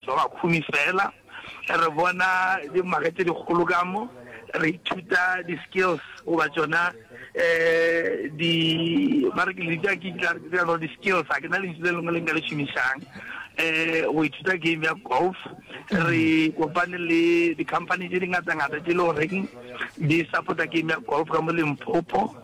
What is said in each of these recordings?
Ba bakhumi fela. Re bona di mage tše dikgolo ka mo, re ithuta di skills goba tšona di, ba re ke le bitša ke tla re no di skills, ga ke na lentšu le lengwe le nka le šomišang, go ithuta game ya golf. Re kopane le di company tše di ngata ngata tše e le goreng di support-a game ya golf ka mo Limpopo.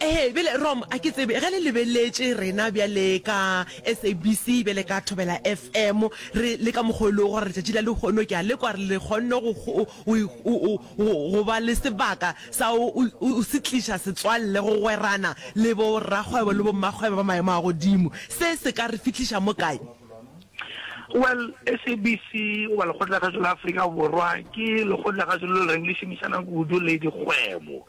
Ee, bjale Rom, a ke tsebe ge le lebeletše rena bjale ka SABC, bjale ka Thobela FM, re, le ka mokgwa o e lego gore letšatši la lehono ke a lekwa gore le kgonne go, go, go, go, go, go ba le sebaka sa go, go, go se tliša setswalle, go gwerana le bo rakgwebo le bo mmakgwebo ba maemo a godimo. Se se ka re fihliša mo kae? Well, SABC goba Lekgotlakgašo la Afrika Borwa ke lekgotlakgašo leo le reng le šomišana kudu le dikgwebo.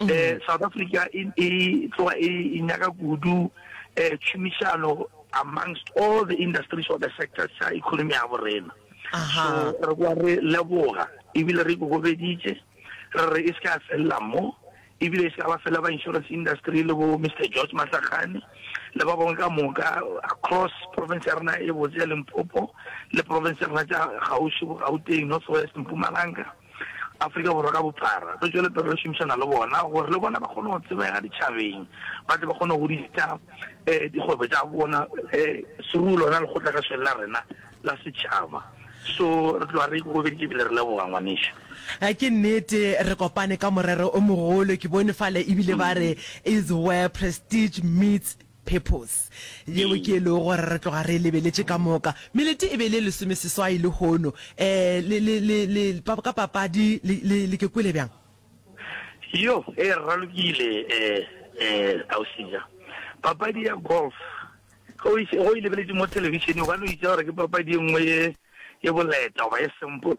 um south africa e, e tloga e, e nyaka kudu um eh, tšhomišano amongst all the industries or the sectors tša economy ya borena so re kwa re leboga ebile re kokobeditše re re e se ka felela mo ebile e se ka ba fela ba insurance industry le bo mr george matlakgane le ba bangwe ka moka across province ya rena e botse ya limpopo le province ya rena tša gauši bo gauteng north west mpumalanga Afrika Borwa ka bophara, re tšwele pele re šomišana le bona gore le bona ba kgone go tsebega ditšhabeng, ba tle ba kgone go godisa um dikgwebo tša bona um through lona lekgotla ka swele la rena la setšhaba. So re tloga re ikokobeditše ebile re leboga ngwanešu. Eh, ke nnete re kopane ka morero o mogolo ke bone fale ebile ba re is where prestige meets Purpose, yeo ke e lego gore re tloga re e lebeletše ka moka. Melete e be e le e lesomeseswai lehono. Um, le, le, le, le, pa, ka papadi, le, le, le ke kwele bjang? Yo, e ralokile, um, um, Ausinya. Papadi ya golf, ge o e, ge o e lebeletše mo thelebišeneng, o ka no itša gore ke papadi e nngwe ye, ye boleta goba ye simple.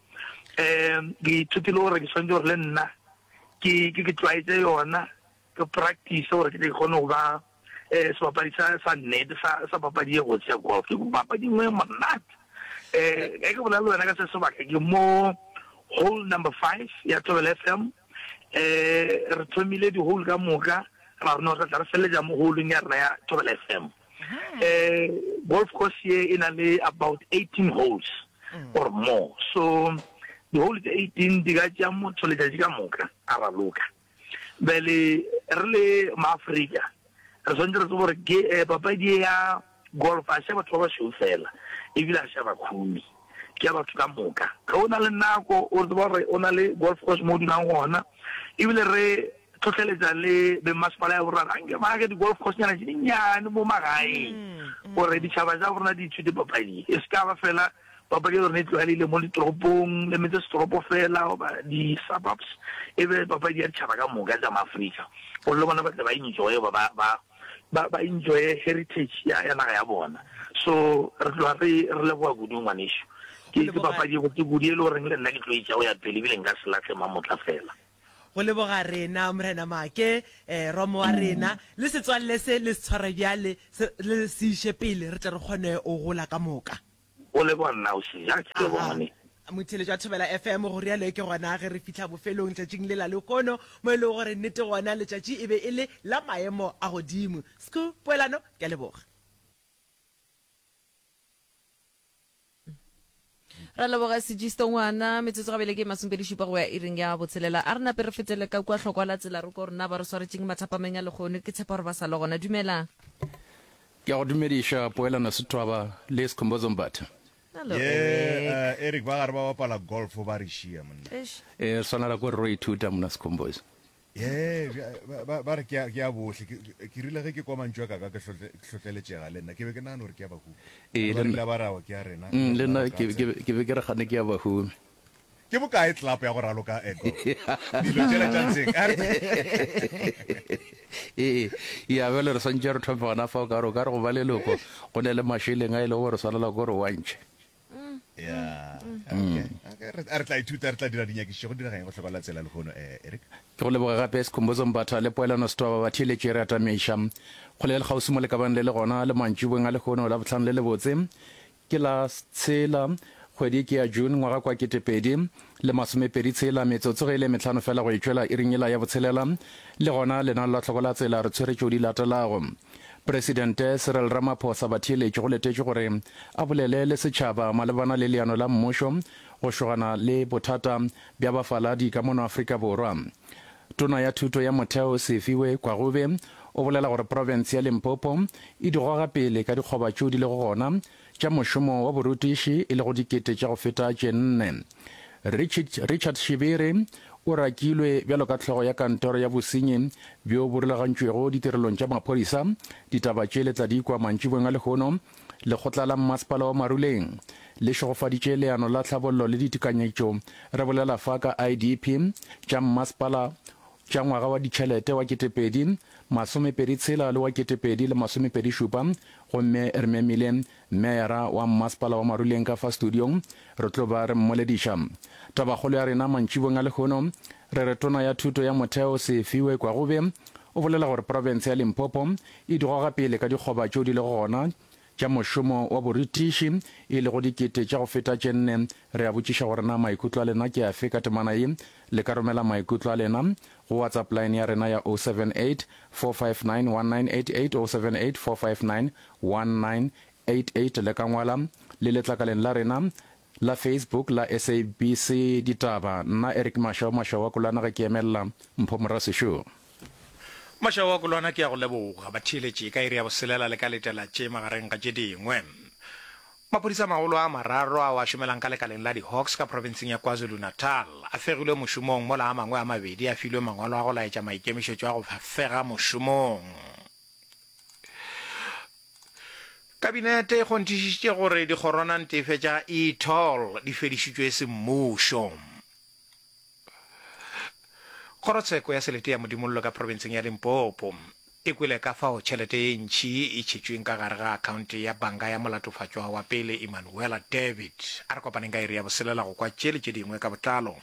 um ke ithutile gore ke swantse gore le nna ke ke tlwaetse yona ke practice gore ke tle ke kgone go ba um sebapadi sa sa nnete sa papadi e gotse ya golf ke papadi nngwe e monate um e ke bolela le wena ka se sebaka ke mo hole number five ya tobel f m um re thomile di-hole ka moka ra rona re tla re feleletsa mo holeng ya rena ya tobel f m Eh, golf course ye e na le about 18 holes mm. or more so di-hole tse 18 di ka tša motho letšatši ka moka a raloka bele re le maaforika re tshwanetse re tse gore eh, papadi ya golf a ša batho ba ba šweu fela ebile a ša bakhumi ke ya batho ka moka. Ge o na le nako, o tseba gore o na le golf course mo o dulang gona, e bile re tlhohleletša le bemmasepala ya borena anke ba age di-golf coursenyana tše dinnyane mo magaeng gore ditšhaba tša borena di ithute papadi e se ka ba fela papadi ya lone e tlwaelegile mo ditoropong le metse setoropo fela goba di-suburbs e be papadi ya ditšhaba ka moka tša maaforika gore le bona ba tle ba enjoye ba ba ba ba enjoye heritage ya ya naga ya bona so re tloga re re leboga kudu ngwanešu ke ke papadi go ke kudu e le goreng le nna ke tlo itša go ya pele ebile nka se latlhe mamotla fela go leboga rena morena make um romo wa rena le setswalle se le se tshware bjale le se iše pele re tle re kgone o gola ka moka O leboga nna o šeja, ke leboga ngwane. Motheletšo wa Thobela FM, go rialo ke gona ge re fihla bofelong tšatšing lela lehono mo e lego gore nnete gona letšatši e be e le la maemo a godimo. Sku Poelano, ke a leboga. Re a leboga Sigisto ngwana. Metsotso gabele ke e masomepedi-šupa go ya iring ya botshelela. A re nape re fetele ka kua hlokwa la tsela re ko gore na ba re swaretšeng mathapameng a lehono. Ke tshepa gore ba sa le gona. Dumelang. Ke a go dumediša Poelano Sethwaba le Sikhumbuzo Mbatha. Hello, Ye, Eric. eh, Eric ba gare ba bapala golf ba re šia monna. Eish. E swanela ko re ro ithuta mona Sikhumbuzo. Ye, bja- ba- ba- ba re ke a- ke a bohle Ke- ke- ke rile ge ke kwa mantšu a kaka ke hlotle- ke hlotleletšega le nna ke be ke nagana gore ke a bahu Ee, le nna. ba rile ba rawa ke a rena Mm, le nna ke ke- ke be ke re gane ke ya Bahumi. Ke bokae tlelapo ya go raloka ego dilo tšela tša ntseng? Ee, ya bjale re swantšha re thome gona fa o ka re o ka re go ba leloko go ne le mašeleng a e lego gore swanela ko re wantšhe. Ya, re tla ithuta, re tla dira dinyakišišo go dirageng go hlokolela tsela lehono, eh, Eric. Ke go leboga gape Sikhumbuzo Mbatha le Poelano Setoba ba theeletše re atameiša kgole ya lekgauswi mo le kabang le le gona le mantšibong a lehono la bohlano le lebotse. Ke la tshela, kgwedi e ke ya June, ngwaga kwa kete pedi le masome pedi tshela, metsotso ge e le metlhano fela go e tšwela iring yela ya botshelela. Le gona lenalo la tlhoko la tsela re tshwere tšeo di latelago. Presidente Cyril Ramaphosa Batheeletši go letetšwe gore a bolele le setšhaba malebana le leano la mmušo go šogana le bothata bja bafaladi ka mono Afrika Borwa. Tona ya Thuto ya Motheo Sefiwe Kwagobe o bolela gore profense ya Limpopo e di goga pele ka dikgoba tšeo di lego gona tša mošomo wa borutiši e lego dikete tša go feta tše nne. Richard, Richard Shibiri o rakilwe bjalo ka hlogo ya kantoro ya bosenyi bjo bo rulagantšwego ditirelong tša maphodisa. Ditaba tše le tla di kwa mantšiboeng a lehono. Lekgotla la Mmasepala wa Maruleng le šegofaditše leano la tlhabollo le ditekanyetšo, re bolela fa ka IDP tša mmasepala tša ngwaga wa ditšhelete wa ketepedi masomepedi tshela le wa ketepedi le masomepedi šupa gomme re memile Meyara wa Mmasepala wa Maruleng ka fa studiong re tlo ba re mmolediša tabakgolo ya rena mantšibong a lehono Re re Tona ya Thuto ya Motheo Sefiwe Kwagube o bolela gore profense ya Limpopo e di goga pele ka dikgoba tšeo di lego gona tša mošomo wa borithiši e lego dikete tša go feta tše nne. Re a botšiša gore na maikutlo a lena ke afe ka temana ye. Le ka romela maikutlo a lena go WhatsApp line ya rena ya 078 459 1988 078 459 1988 le ka ngwala le letlakaleng la rena La Facebook la SABC Ditaba, Nna Eric Masha wa Masha wa Kolwana ge ke emelela Mpho Morasešoo. Masha wa Kolwana ke ya go leboga batheeletši ka iri ya boselela le ka letela tše magareng ga tše dingwe. Maphodisa a magolo a mararo ao a šomelang ka lekaleng la di-Hawks ka profenseng ya KwaZulu-Natal a fegilwe mošomong mola a mangwe a mabedi a filwe mangwalo a go laetša maikemišetšo a go fega mošomong. Kabinete e kgonthišišitše gore dikgoronantefe tša e-toll di fedišitšwe semmušo. Kgorotsheko ya selete ya Modimollo ka profenseng ya Limpopo e kwele ka fao tšhelete ye ntši e tšhetšweng ka gare ga akhaonte ya banka ya molatofatšwa wa pele Emmanuella David. A re kopaneng ka iri ya boselela go kwa tše le tše dingwe ka botlalo.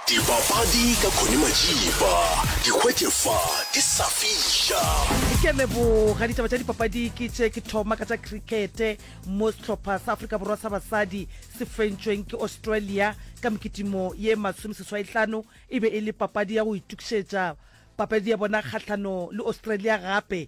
Dipapadi ka Connie Majiba, di hwetše fa di sa fiša. Ke a leboga. Ditaba tša dipapadi ke tše ke thoma ka tša crickete mo sehlopha sa Afrika Borwa sa basadi se fentšweng ke Australia ka mekitimo ye masomeseswaitlano. E be e le papadi ya go itukišetša papadi ya bona kgahlano le Australia gape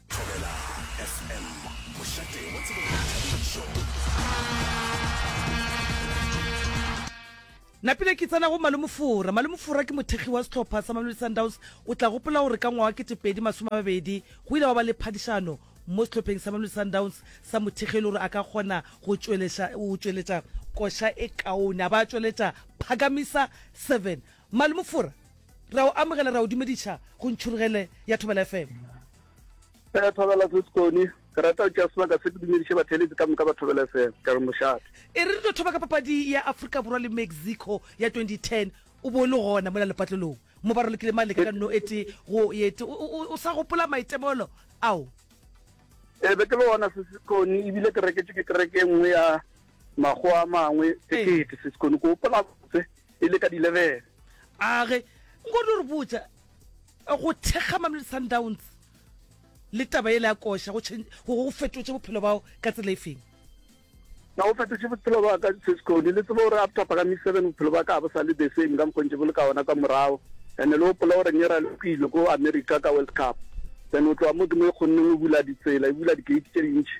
Thobela FM, mošate wa tsebo le boithabišo. napile ke tsena go malomofora malomofora ke mothekgi wa setlhopha sa mamelodi sundowns o tla gopola gore ka ngwa wa ketepedi masome a mabedi go ile wa ba le phadišano mo setlhopheng sa mamelodi sundowns sa mothekgi e le gore a ka kgona go tšweletša koša e kaone a ba a tšweletša phakamisa seven Mmali Mofora, ra o amogela, ra o dumediša go Ntšhurugele ya Thobela FM. Ee, Thobela se Sekone. Ke rata go tšea sebaka se ke dumediše batheeletsi ka moka ba Thobela FM. Ke re mošate. E re re tlo thoba ka papadi ya Afrika Borwa le Mexico ya 2010. O bo o le gona mola lepatlelong mo ba ralokile male ka ka nno e tee go ye tee. O, o, o sa gopola maitemogelo ao? Ee, be ke le gona se Sekone, e bile ke reketšwe ke kereke e nngwe ya mago a mangwe sekete se sekone ko opola botse e le ka dilebele age nkodi re botsa go thekga mamele sundowns le taba ele ya koša go fetotše bophelo bao ka tsela e feng na go fetotše bophelo ba ka sesekone le tsebo gore after pagami seven bophelo ba ka bo sa le the same ka mokgontše bo le ka ona ka morago and-e le gopola gore ne ra le kwile ko america ka world cup then o tloa mo ke mo e kgonneng o bula ditsela e bula di-gate tše dintšhi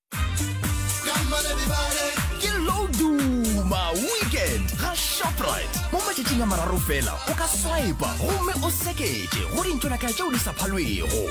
ke low duma weekend ga shoprite mo matšatšing a mararo fela o ka swipa gomme o seketše go dintšonakaya tšeo di sa phalwego